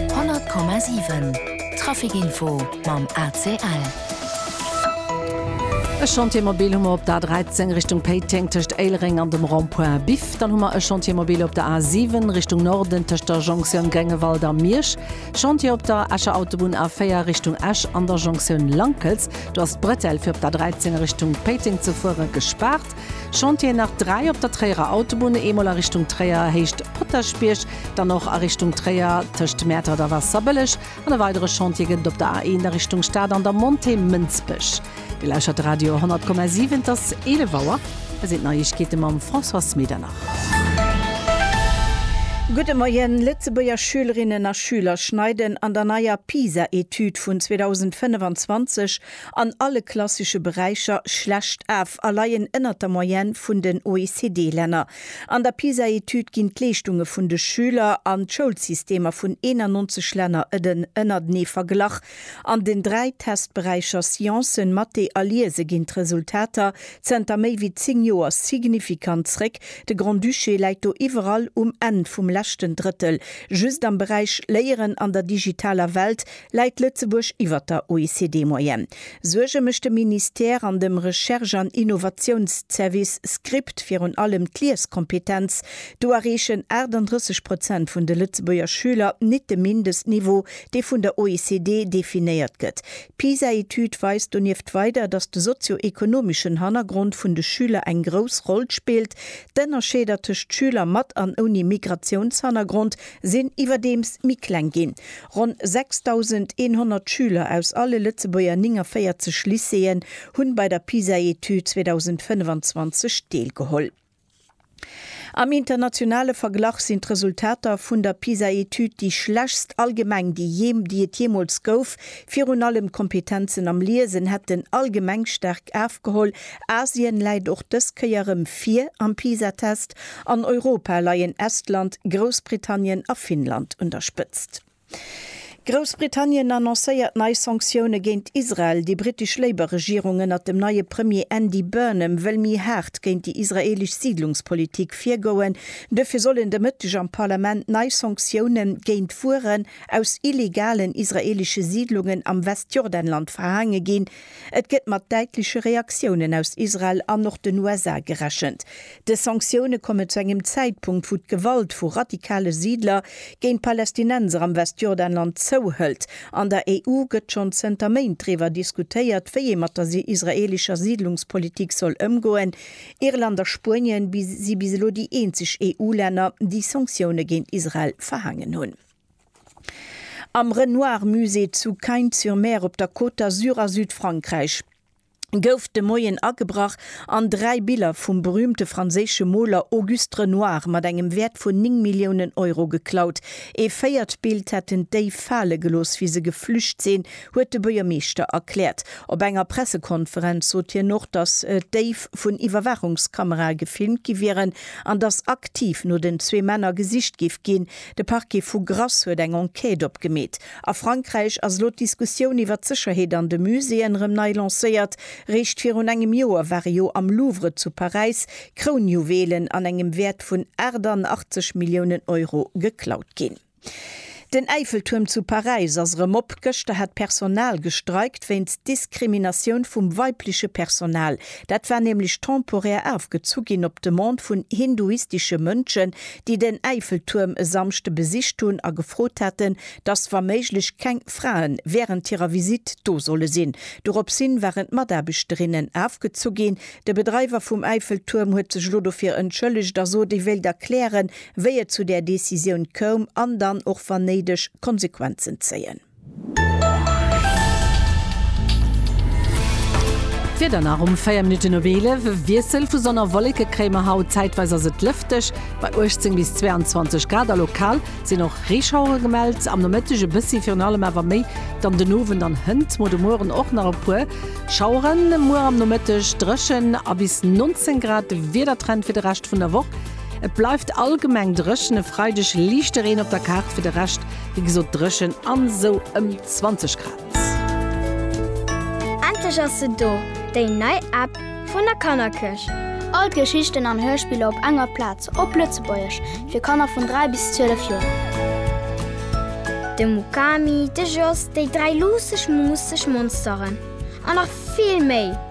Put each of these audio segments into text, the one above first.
100,7 Traficinfo mam ACL. E Chantier mobile hu mer op der A 13 Richtung Péiteng tëscht Éilereng an dem Rond-point Biff. Dann hu mer e Chantier mobile op der A 7 Richtung Norden tëscht der Jonktioun Gréngewald a Miersch. Chantier op der Escher Autobunn A 4 Richtung Esch an der Jonktioun Lankels. Do ass d'Bretelle fir op der A 13 Richtung Péiteng ze fuere gespaart. Chantieren nach 3 op der Tréierer Autobunn, eemol a Richtung Tréier Héicht Potaschbierg, dann och a Richtung Tréier tëscht Mäertert a Waasserbëlleg an e weidere Chantier gëtt et op der A1 a Richtung Stad an der Montée Mënsbech. Dir lauschtert de Radio 100,7, et ass 11 Auer. Hei sinn d'Neiegkeete mam Françoise Medernach. Gudde Moien, Lëtzebuerger Schülerinnen a Schüler schneiden an der neier PISA-Etüd vun 2025 an alle klassesche Beräicher schlecht af a leien ënnert der Moyenne vun den OECD-Länner. An der PISA-Etüd ginn d'Leeschtunge vun de Schüler an d'Schoulsystemer vun 91 Länner ëden ënnertenee verglach. An den dräi Testberäicher Sciencen, Mathé a Liese ginn d'Resultater zënter méi wéi zéng Joer signifikant zréck. De Grand-Duché läit do iwwerall um Enn vum leschten Drëttel. Just am Beräich Léieren an der digitaler Welt Läit Lëtzebuerg iwwer der OECD-Moyenne? Suerge mécht dem Ministère an dem Recherche an Innovatiounszervice, Script, virun allem d'Lieskompetenz. Do erreechen 38 Prozent vun de Lëtzebuerger Schüler nit de Mindestniveau, dee vun der OECD definéiert gëtt. D'PISA-Etüd weist donieft weider, datt de sozio-ekonomeschen Hannergrond vun de Schüler eng grouss Roll spillt. D'Ënnerscheeder tëscht Schüler mat an ouni Migratiounshannergrond sinn iwwerdeems méi kleng ginn. Ronn 6.100 Schüler aus alle Lëtzebuerger 49 Lycéeën hunn bei der PISA-Etüd 2025 deelgeholl. Am internationale Verglach sinn d'Resultater vun der PISA-Etüd déi schlechst allgemeng déi et jeemools gouf. Virun allem d'Kompetenzen am Liesen hätten allgemeng staark afgeholl. Asien läit och dës Kéier erëm vir am PISA-Test An Europa leien Estland, Groussbritannien a Finnland un der Spëtzt. Groussbritannien annoncéiert nei Sanktioune géint Israel, déi brittesch Labour-Regierung ënnert dem neie Premier Andy Burnham wëll méi haart géint déi israeelesch Siidlungspolitik virgoen. Duerfir sollen de Mëtteg am Parlament nei Sanktioune géint Wueren aus illegalen israeelesche Siidlungen am Westjordanland verhaange ginn, Et gëtt mat däitleche Reaktiounen aus Israel an och den USA gerechent. Dës Sanktioune kommen zu engem Zäitpunkt, wou d'Gewalt vu radikale Siidler géint Palästinenser am Westjordanland zouhëlt. An der EU gëtt schonn zënter Méint driwwer diskutéiert, wéi ee mat der israeelescher Siidlungspolitik soll ëmgoen. Irland a Spuenien si bis elo déi eenzeg EU-Länner, déi Sanktioune géint Israel verhaangen hunn. Am Renoir Musée zu Cagnes-sur-Mer op der Côte d'Azur a Südfrankräich gouf de Moien agebrach an dräi Biller vum berüümte franséische Moler Auguste Renoir mat engem Wäert vun 9 Milliounen Euro geklaut. Ee véiert Bild hätten d'Déif fale gelooss, wéi se geflücht sinn, huet de Buergermeeschter erkläert. Op enger Pressekonferenz sot hien och, datt d'Déif vun Iwwerwaachungskamerae gefilmt gi wieren an datt aktiv no den zwee Männer gesicht géif ginn, De Parquet vu Grasse huet eng Enquête opgemeet. A Frankräich ass elo d'Diskussioun iwwer d'Sécherheet an de Muséeën erëm nei lancéiert. Réischt virun engem Joer ware jo am Louvre zu Paräis Krounjuwelen an engem Wäert vun 88 Milliounen Euro geklaut ginn. Den Äifeltuerm zu Paräis ass erëm op. Gëschter hat d'Personal gestreikt wéinst Diskriminatioun vum weibleche Personal. Dat war nämlech temporär afgezu ginn op Demande vun hinduistesche Mënschen, déi den Äifeltuerm e Samschde besicht hunn a gefrot haten, dass wa méiglech keng Frae wärend hirer Visitt do solle sinn. Doropshin waren d'Mataarbechterinnen afgezu ginn. De Bedreiwer vum Äifeltuerm huet sech elo dofir entschëllegt a sot, e wéilt erklären, wéi et zu där Decisioun koum an dann och wann néideg Konsequenzen zéien. D'Wieder nach um 4 Minutten op 11, e Wiessel vu Sonn a Wolleke kréie mer haut. Zäitweis ass et lëfteg bei 18 bis 22 Grad a lokal sinn och Reeschauere gemellt. Am Nomëtteg e bëssi, virun allem awer méi dann den Owend an hënt mo. De Mueren och nach e puer Schaueren, muer am Nomëtteg dréchen a bis 19 Grad de Wiedertrend fir de Rescht vun der Woch. Et bleift allgemeng dréchen, e Freideg liichte Reen op der Kaart, fir de Rescht Wéi gesot dréchen an sou ëm 20 Grad. Endlech ass se do, déi nei App vun der Kannerkëch! All d'Geschichten an Hörspiller op enger Plaz, op Lëtzebuergesch, fir Kanner vun 3 bis 12 Joer. De Mukami, de Jos, déi dräi luusseg, muusseg Monsteren an nach vill méi!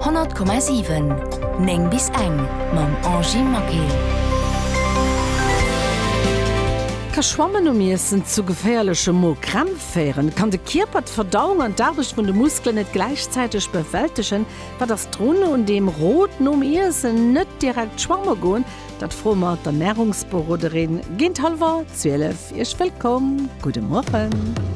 100,7 9 bis eng mam Angy Maquet. Ka Schwammen nom Iessen zu geféierleche Mo-Krämpf féieren? Kann de Kierper d'Verdauung an d'Aarbecht vun de Muskelen net gläichzäiteg bewältegen? Wat ass drun un deem Rot, nom Iessen net direkt schwamme goen? Dat froe mer d'Ernärungsberoderin géint hallwer 12. Iech wëllkomm, gudde Mueren.